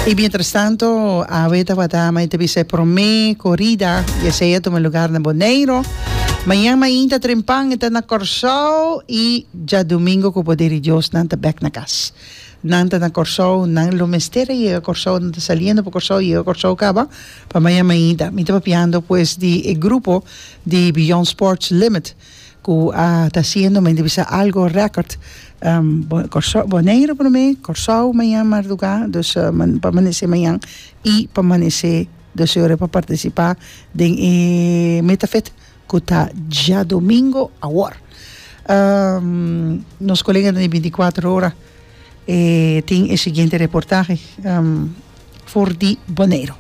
Y mientras tanto, Awe tabata mai te bisa promé corrida y ese ya toma lugar na Boneiro. Mañana main ta trempan eta na Corsao y ya domingo con poder di Dios nan ta back na cas. Nan ta na Corsao, nan lo mester a yega Corsao, nan ta saliendo pa Corsao, yega Corsao caba pa mañana mainta. Mi ta papiando pues di e grupo di Beyond Sports Limit Cu a ta haciendo me di bisa algo record Corsou Boneiru prome Corsou mañan marduga dus pa manece mañan y pa manece dus ora pa participa den e Metafet cu ta diadomingo awor nos colega ta di binti cuatro ora E tin e siguiente reportahe for di Boneiru.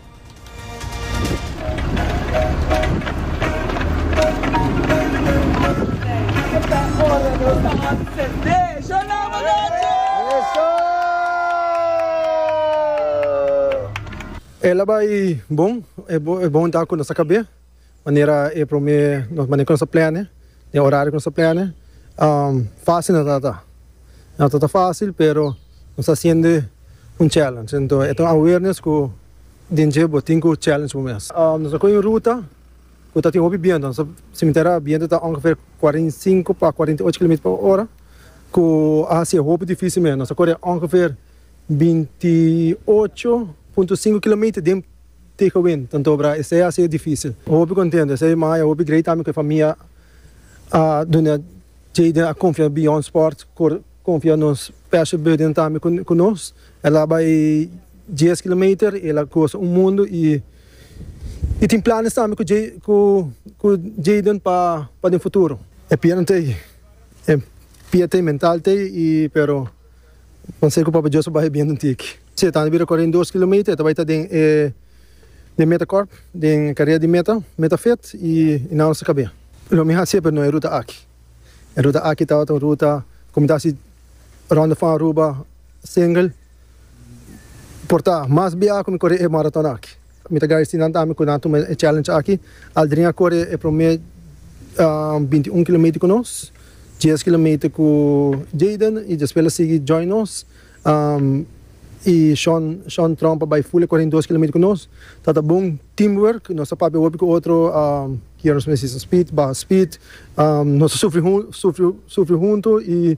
E la bai bon, e bon ta cu nos ta cabé. Manera e prome nos manera ku nos ta plane, den e orario ku nos ta plane, fásil no ta ta. No ta ta fásil pero nos ta hasiendo un challenge, enton e ta un awareness ku den dje bo tin ku challenge bo mes. Nos a koge un ruta ku ta tin hopi bientu, nos ta simentera bientu ta ongever kuarenta i sinku pa kuarenta i ocho kilometer pa ora ku a hasi e hopi difísil mes, nos a kore ongever binti i ocho punto sinku kilometer den. Tij win, tanto obra esei a sido dificil. Hopi contento esei ma e hopi grei tambe cu e famia a duna Jayden a confia beyond sport por confia nos special burden tambe cu nos. El a bay dies kilometer y el a goza un mundo y y tin planes tambe cu Jay cu Jayden pa den futuro. E pierna t'ey, e pie t'ey, mental t'ey y pero. Pansei ku Papa Joshua bai e bientu n'ti aki. Si e ta bira kore den dos kilometer e ta bai ta den e den meta kòrp den e karera di meta meta fet i i nan lo sa kab'é. Lo mi hasié pero no e ruta aki. E ruta aki tabata un ruta komo ta hasi Ronda van Aruba, Singel, por ta mas biaha ku mi kore e maratona aki. Mi ta gradesí nan tambe ku nan tuma e challenge aki. Aldrin a kore e promé binti un kilometer ku nos, dies kilometer ku Jayden i despues el a sigui join nos. I Shawn Shawn Trump a bai ful e koren dos kilometer ku nos. Ta ta bon team work, nos a papia hopi ku otro ki yora nos mester hisa speed, baha speed. Nos a sufri sufri sufri huntu i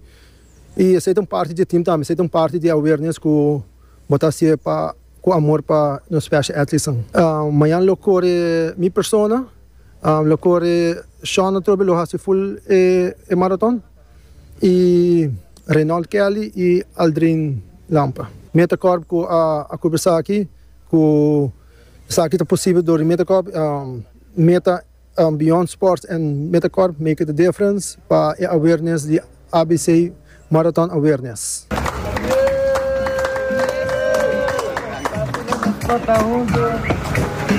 I esei ta un parti di e team tambe, esei ta un parti di e awareness ku bo ta hasié pa ku amor pa nos special athletesnan. Mañan lo kore mi persona, lo kore Shaun atrobe lo hasi full e maraton i Reynold Kelly i Aldrin Lampa. Metacorp ku a kubri esaki ku esaki ta posibel dor di Metacorp, meta. Beyond Sports and Metacorp make it a difference pa e awareness di ABC Marathon Awareness.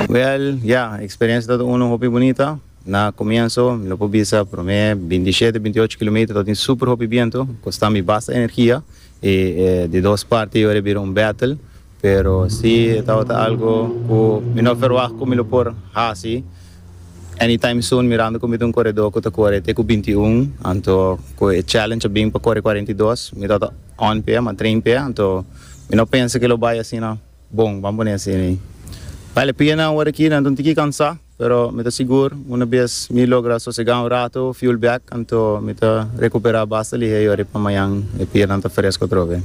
Well ya experiencia ta uno hopi bunita na comienso mi lo por bisa prome bintisiete bintiocho kilometer lo tin super hopi biento costami basta energia y di dos parte yo a bira un battle Pero si e tabata algo ku mi no ferwagt ku mi lo por hasi anytime soon mirando ku mi ta un koredó ku ta kore te ku binti un anto ku e challenge a bin pa kore kuarenta i dos mi tabata on p'e ama train p'e anto mi no pensa ku lo bai asina bon ban pone asina bai la pianan awor aki nan ta un tiki kansá. Pero mi ta sigur, una bes mi logra sosegá un rato, fuel back, anto mi ta rekuperá basta lihé yori pa mañan e pielnan ta fresko atrobe.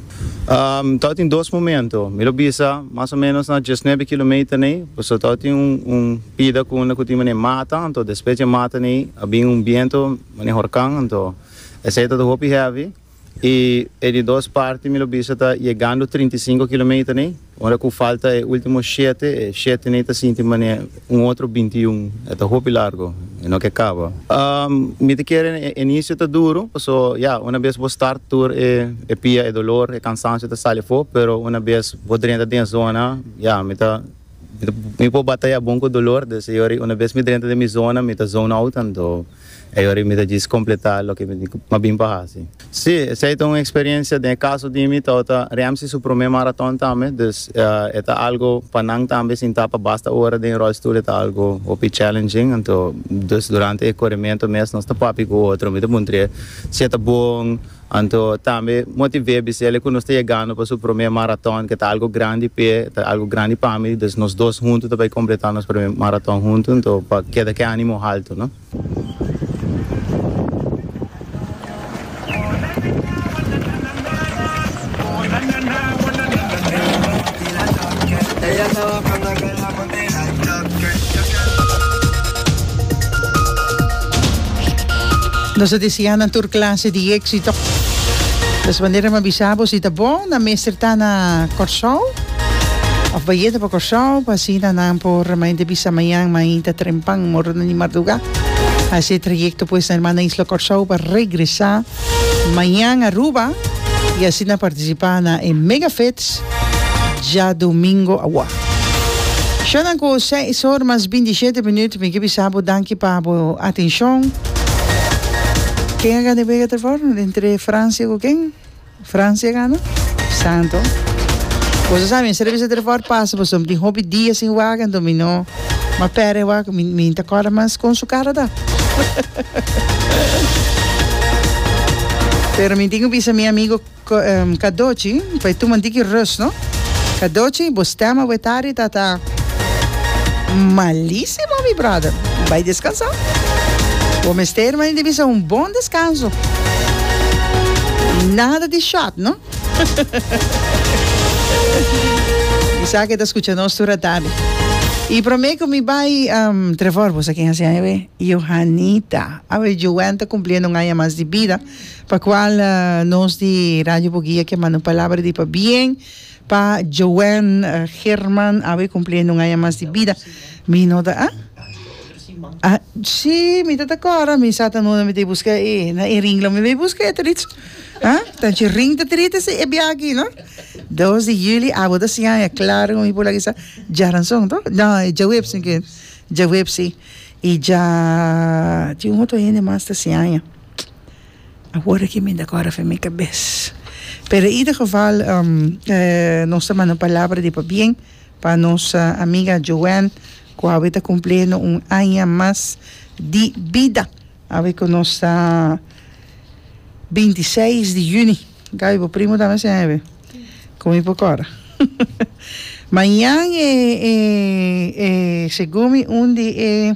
Tau tin dos momento, mi lo bisa mas o ménos na diesnuebe kilometer nei, pasobra tau tin un pida ku unda ku tin manera mata, anto despues dje mata nei a bin un biento manera horkan, anto esei tabata hopi hevi. y e di dos parti mi lo bisa ta yegando trinta y sinku kilometer nei, ora cu falta e ultimo shete, e shete nei ta sinti manera un otro binti y un, e ta hopi largo, e no ke caba. Mi ta kere e inicio ta duro, paso ya, una bes bo start tur e e pia, e dolor, e cansancio ta sali afo, pero una bes bo drenta den e zona, ya, mi ta, mi por bataya bon cu dolor, desde ayora y una bes mi drenta den mi zona, mi ta zone out anto. Ei ora i mi ta djis kompletá loke mi a bin pa hasi. Sí, esei ta un eksperiencia. Den e kaso di mi tau ta Ramsey su promé maraton tambe, dus e ta algo pa nan tambe sintá pa basta ora den e rolstoel e ta algo hopi challenging. Anto, dus durante e korementu mes nos ta papia ku otro, mi ta puntr'é si e ta bon. Anto tambe motiv'é bis'ele ku nos ta yegando pa su promé maraton ke ta algu grandi p'e, ta algu grandi pa mi, dus nos dos huntu ta bai kompletá nos promé maraton huntu, anto pa keda ke ánimo haltu, no. Nos a deseá nan tur clase di éxito. Des manera mi a bisa bo si ta bon nan mester ta na Kòrsou òf bayeta pa Kòrsou pa asina nan por mi a henter bisa mañan mi a hinta trempan morona di mardugá hasi e trayekto pues na hermana isla Kòrsou pa regresá. Mañan Aruba y asina participa na e Mega Fits djadomingo awa. Shownan cu seis or mas bintisiete minuut mi ki bisa bo danki pa bo atencion. Ken a gana e wega ter for entre Francia cu ken? Francia gana Santo Boso sa mi servicio ter for pasa pasobra mi tin hopi dia sin wak enton mi no a pere wak mi ta corda mas con su cara ta pero mi tin ki bisa mi amigo Cadochi pa e tuma un tiki rust no Cadochi bo stem awe tardi ta ta Malisimo mi brother bai descansa bo mester mani di bisa un bon descanso nada di shot no mi sa ke ta scucha nos tur atabe y prome cu mi bai um Trevor bo sa ken a siaña be Johanita awe Joan ta cumpliendo un aña mas di bida pa cual nos di Radio Buguia ke manda un palabra di pabien Pa Joanne German awe cumpli aña un aña mas di bida. Mi no ta ah? Ah, si, mi ta ta cora, mi sa ta no mi ta e busca e, na e ring lo mi bay busca e ta rich. Ah, ta anchi ring ta triste si e bia aki no. Dos di juli abo ta si aña, claro cu mi por lagisa Jaranson to, no e Jaweb si ken, Jaweb si. Y dja tin un otro hende mas ta si aña. Awor aki mi ta kòrda for mi kabes. Pero en ieder geval nos ta manda un palabra di pabien pa nos amiga Joan cu awe ta cumpleaño un aña mas di bida. Awe cu nos ta binti seis di juni. Gaby bo primo tambe a siña awe? Con mi por kòrda. Mañan e segun mi un di e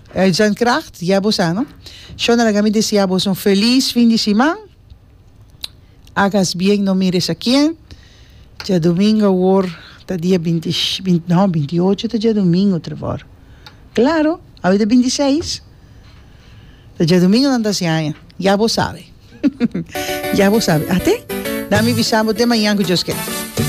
Ey Jan Kracht, ya bo sa no. Shona laga mi desi abos un feliz fin di siman. Agas bien no mira esa kien. Djadomingo awor ta dia binti no binti ocho ta djadomingo Trevor. Claro awe ta binti seis. Ta djadomingo nan ta hasi aña. Ya bo sabe. ya bo sabe. Ate? Dami bisa bo te mañan ku Dios ken.